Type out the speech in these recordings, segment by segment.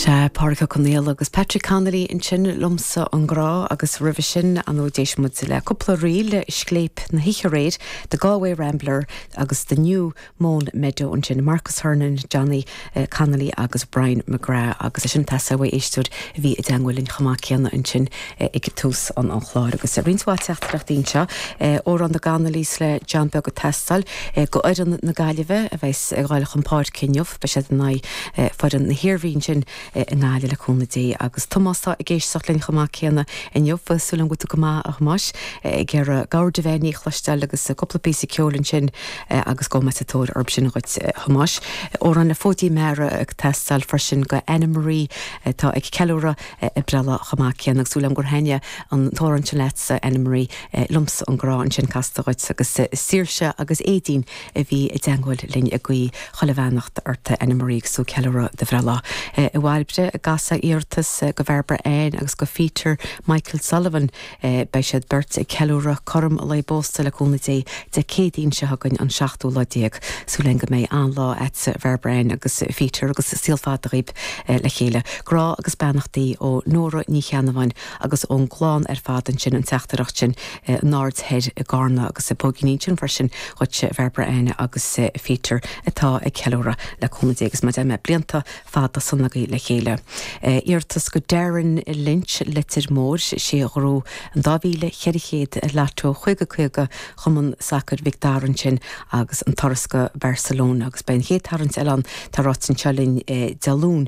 Sea, Pádraig Ó Conaola agus Patrick Connolly ansin, Liomsa an Grá agus roimhe sin, ar ndóigh d'éist muid le cúpla ríl, Scléip na hOíche Aréir, The Galway Rambler agus The New Mown Meadow ansin, Marcus Hernon, Johnny Connolly agus Brian McGrath agus é sin ag teastáil ó éisteoir a bhí i dteangmháil linn chomh maith céanna ansin ag tús an chláir agus roinnt mhaith teachtaireachtaí anseo, amhrán na gConnollys le John Beag ag teastáil go fhoireann na Gaillimhe a bheas ag dul chun páirce inniu. Beidh siad in aghaidh foireann na hIarmhí ansin i nGaillimh le cúnamh Dé. Agus Tomás atá ag éisteacht linn chomh maith céanna inniu, súil agam go bhfuil tú go maith, a Thomáis. Ag iarraidh cabhair de bheith ní chloisteáil agus cúpla píosa ceoil ansin agus gabhfaidh mé sa tóir orthu sin dhuit, a Thomáis. Amhrán le Fóidín Meara ag teastáil freisin go Anna Marie atá ag ceiliúradh a breithlá chomh maith céanna. Agus súil agam gur thaitin an t-amhrán sin leat, a Anna Marie. Liomsa an Grá ansin casta dhuit agus Saoirse agus Éadaoin. a bhí i dteangmháil linn ag guí chuile bheannacht ort a Annemarie agus tú ag ceiliúradh do bhreithlá. I bhFailbhre i gCasla iarratas go Bhairbre Ann agus go Pheter Michael Sullivan. Beidh siad beirt ag ceiliúradh cothrom lá a bpósta le cúnamh Dé Dé Céadaoin seo chugainn an seachtú lá déag. Súil again go mbeidh an-lá a'dsa a Bhairbre Ann agus Pheter agus saol fada dhaoibh le chéile. Grá agus beannachtaí ó Nóra Ní Cheannabháin agus ón gclann ar fad ansin an teachtaireacht sin. An Aird Thoir, i gCarna agus póigíní ansin freisin dhuit a Bhairbre Ann agus Pheter atá ag ceiliúradh le cúnamh Dé agus mar a dúirt mé blianta fada sona agaibh le chéile. Iarratas go Darren Lynch, Leitir Móir, sé a ghnóthaigh an 2400 Lotto 50 50 Chumann Sacair Mhic Dara ansin agus an turas go Barcelona agus beidh an chéad tarraingt eile ann tá ráite anseo linn Dé Luain.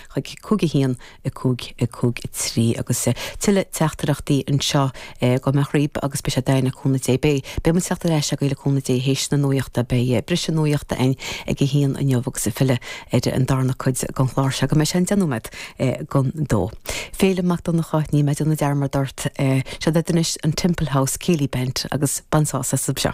chuig cúig a haon, a cúig, a cúig a trí agus tuilleadh teachtaireachtaí anseo cuid mhaith díobh agus beidh sé d'aidhm le cúnamh Dé beidh beidh muid ag teacht ar ais agaibh le cúnamh Dé théis na nuachta beidh briseadh nuachta again ag a haon inniu agus ag filleadh ar an darna cuid den chlár seo go mbeidh sé an deich nóiméad don dó. Féilim Mac Donnacha Níl mé ag déanamh dearmad ort. Seo duit anois an Temple House Céilí Band agus bain sásamh as seo.